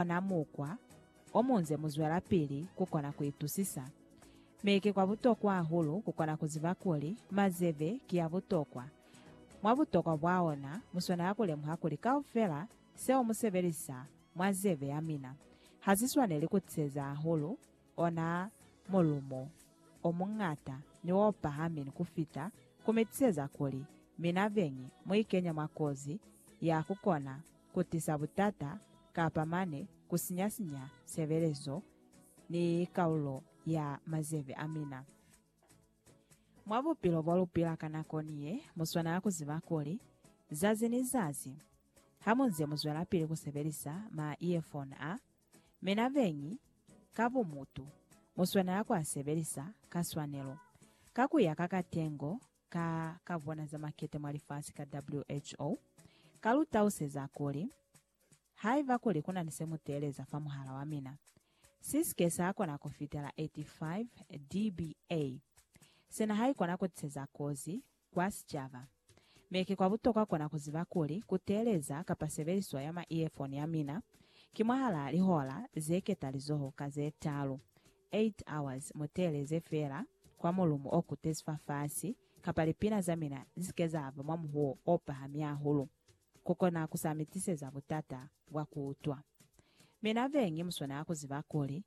ona mukwa omunze muzwelapili kukona kuitusisa. Mi ki kwabutokwa hahulu kukona kuziba kuli mazebe ki abutokwa. Mwa butokwa bwaona, muswanela kulemuha kuli kaufela seo musebelisa mwa zebe yamina hasiswaneli kutiseza hahulu ona mulumo omuñata ni opahami ni kufita, kumitiseza kuli mina beñi muikenya mwa kozi ya kukona ku tisa butata kapa mane ku sinya-sinya sebelezo ni kaulo ya mazebe a mina. Mwa bupilo bo lu pila ka nako ni ye, mu swanela ku ziba kuli, zazi ni zazi, ha mu nze mu zwelapili ku sebelisa ma-earphone a, mina beñi, ka bumutu, mu swanela ku a sebelisa ka swanelo, ka ku ya ka katengo ka kavwana za makete mwa lifasi ka WHO, ka lu tauseza kuli, Haiba kuli ku na ni se mu teeleza fa muhala wa mina, si si ke sa kona ku fitela 85 dBA. Sina haikona ku tiseza kozi kwa sicaba. Mi ki kwa butokwa kona ku ziba kuli ku teeleza kapa sebeliso ya ma-earphone ya mina ki mwahalaa lihola ze ketalizoho ka ze talu, 8 hours mu teeleze feela kwa mulumu o kutezi fafasi, kapa lipina za mina li si ke za ba mwa muhuwo o pahami hahulu, ku kona ku sa mi tiseza butata bwa ku utwa. Mina beñi mu swanela ku ziba kuli,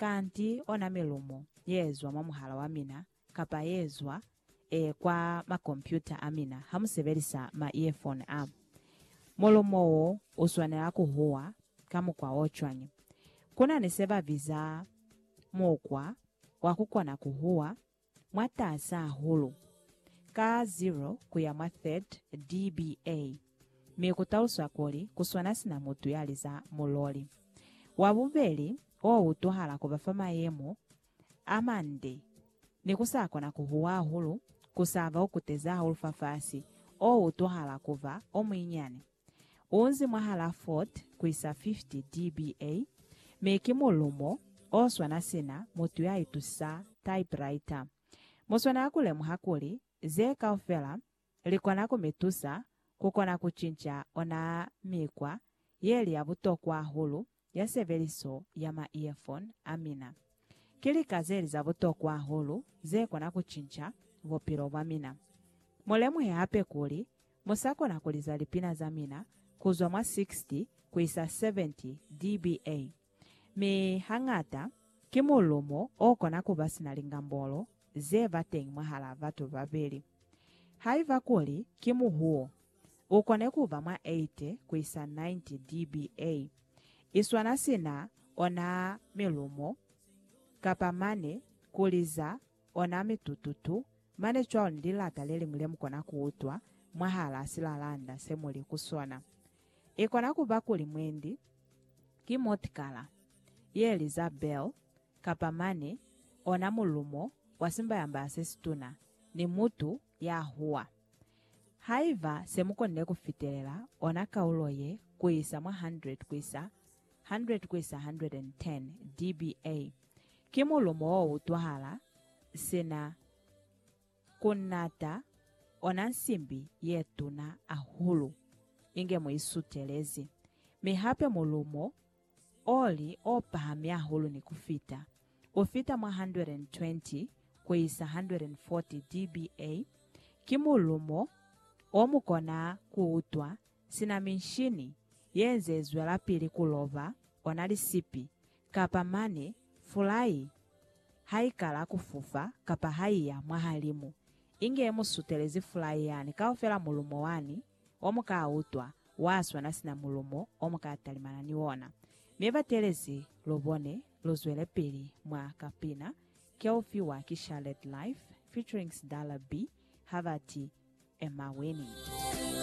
kanti ona milumu ye zwa mwa muhala wa mina Kapa yezwa e kwa makompyuta a mina ha musebelisa ma earphone a. Mulumo wo uswanela kuhuwa ka mukwa o cwañi? Kuna ni se babiza mukwa wa kukona kuhuwa mwataasa hahulu, ka 0 kuya mwa 30 dBA, mi kutaluswa kuli kuswana sina mutu yaliza muloli. Wa bubeli o utuhala kuba fa mayemo a mande, ni ku sa kona ku huwa hahulu, ku sa ba o kutezi hahulu fafasi, o utwahala ku ba o muinyani. U nzi mwahalaa 40 ku isa 50 dBA, mi ki mulumo o swana sina mutu ya itusisa typewriter. Mu swanela ku lemuha kuli ze kaufela Likona ku mi tusa kukona ku cinca ona mikwa ye li ya butokwa hahulu ya sebeliso ya ma earphone a mina. Ki lika zeli za butokwa hahulu ze kona ku cinca bupilo bwa mina. Mu lemuhe hape kuli mu sa kona ku liza lipina za mina kuzwa mwa 60 kuisa 70 dBA. Mi hañata, ki mulumo o kona kuba sina lingambolo ze ba teñi mwahala batu babeli. Haiba kuli ki muhuo, u kone kuba mwa 80 kuisa 90 dBA, iswana sina ona milumo kapa mane kuliza Ona mi tututu, mane cwalo ni lilata leliñwi lemukona kuutwa mwahalaa silalanda semuli ku sona. Ikona kuba kuli mwendi ki motikala yeliza bell, kapa mane ona mulumo wa simbayambaya sesituna, ni mutu yahuwa. Haiba semukonile kufitelela ona kaulo ye kuisa mwa 100 kuisa 100-110 dBA, ki mulumo o utwahala sina ku nata, ona nsimbi ye tuna ahulu inge mu isutelezi, mi hape mulumo o li o pahami ahulu ni ku fita, u fita mwa 120-140 dBA, ki mulumo o mu kona ku utwa Sina minshini ye nze zwelapili ku loba, ona lisipi, kapa mane fulai ha i kala ku fufa kapa ha i ya mwahalimu, inge mu sutelezi fulai yani kaufela mulumo wani o mu ka utwa wa swana sina mulumo o mu ka talimana ni ona. Mi batelezi lu bone, lu zwelepili mwa kapina ke u fiwa ki Charlotte Life featuring Sdallah B ha ba ti, Am I Winning?